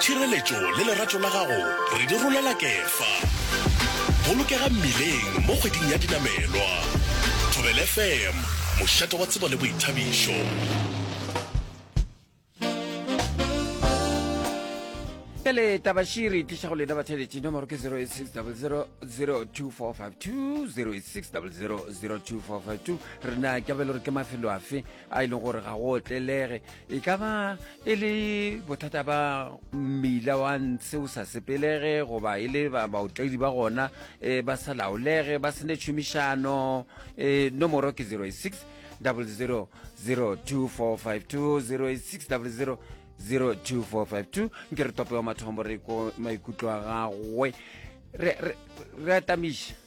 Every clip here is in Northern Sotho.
Tšhireletšo le lerato la gago re di rolela Kefa. Bolokega mmileng mo kgweding ya dinamelwa. Thobel FM, mošate wa tsebo le boithabišo. Bjale taba she re tliša go lena batheletši nomoro ke 0860002452 0860002452 rena ke bele gore ke mafelo afe a e leng gore ga go otlelege e ka ba e le bothata ba mmila wa ntshe o sa sepelege goba e le baotledi ba gona um ba sa laolege ba sene tšhomišano um e, nomoro ke 086 00 02452 086 00 02452 nke re tope wa mathomo re ko maikutlo a gagwe re atamiša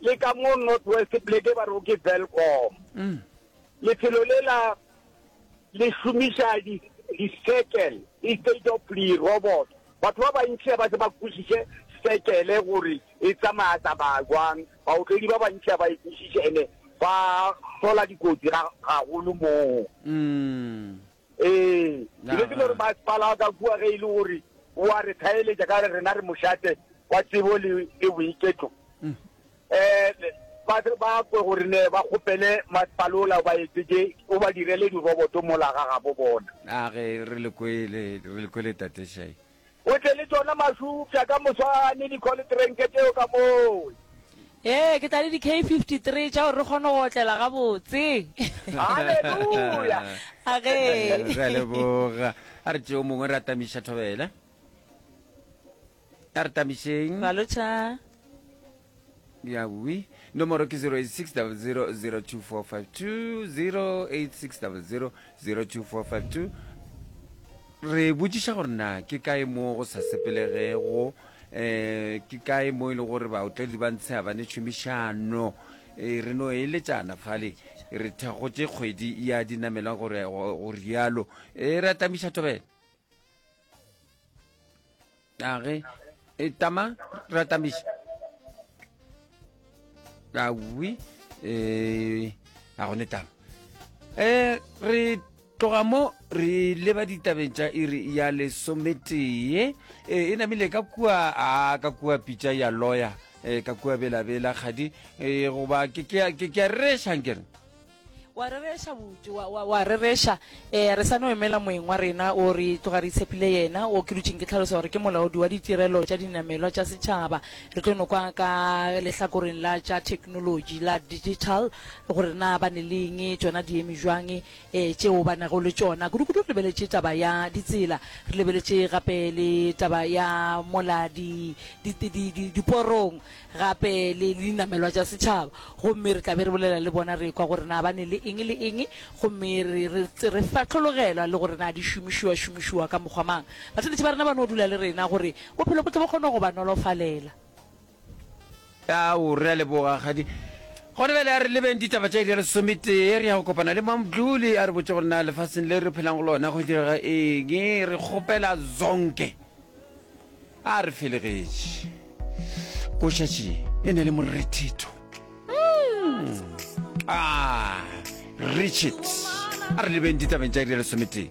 le ka mo North West Pleke ba re ke Welkom. Lefelo le la le šomiša di di circle instead of di robot. Batho ba bantši ba se ba kwešiše circle gore e tsamaya tsamaya jwang. Baotledi ba bantši ba e kwešiše ene ba hlola dikotsi ga gagolo moo. Ee, ke be ke no re masepala a ka kua ge e le gore o a re thaeletša ka re rena re mošate wa tsebo le le boiketlo. Um ba tle ba kwe gore ne ba kgopele masepala ola o ba etsetše o ba direle diroboto mola ga gabo bona. A ge re le kwele re le kwele tate Shai. O tle le tšona masupša ka moswane, dikholitrenke tšeo ka mowe. Ee, ke tla le di-K 53 tša gore re kgone go otlela gabotse. Haleluya! A ge. Re a leboga. A re tšeo mongwe re atamiša thobela. A re tamišeng. Balocha. Yawii. Nomoro ke 0860002452, 0860002452. Re botšiša gore na ke kae mo go sa sepelegego, eh ke kae mo e le gore baotledi ba ntsha ba ne tšhomišano. Eh, re no eletšana fale re thakgotše kgwedi ya dinamelwa gore go go rialo. Eh, re atlamiša thobela. age e tama ratamiša awi um a gone tama um re tloga mo re leba ditabeng tša iri ya lesometee e namile ka kua a ka kua pitša ya loya um ka kua belabela kgadi um goba ke ke a rerešankere wa rereša bute wa, wa, wa rereša um re sa no emela moeng wa rena o re tloga re itshepile yena o ke dutšeng ke tlhalosa gore ke molaodi wa ditirelo tša dinamelwa tša setšhaba re tlo nokwa ka lehlakoreng la tša technology la digital gore na ba ne leng tšona di eme jwang um eh, tšeo ba nago le tšona kudukudu re lebeletše taba ya ditsela re lebeletše gape le taba ya mola diporong gape le dinamelwa tša setšhaba gomme re tla be re bolela le bona re kwa gore na ba ne le eng le eng gomme re re re fatlhologelwa le gore na di šomišiwa šomišiwa ka mokgwa mang batheletše ba rena ba no dula le rena gore bophelo bo tle bo kgone go ba nolofalela Ao, re a leboga, kgadi. Gona bjale a re lebeng ditaba tša iri ya lesometee. Re ya go kopana le Mamdluli a re botše gore na lefaseng le re phelang go lona go direga eng. Re kgopela zonke. A re felegetše. Go šetše e ne le morethetho. A Richard, a re lebeng ditabeng tša iri ya lesometee.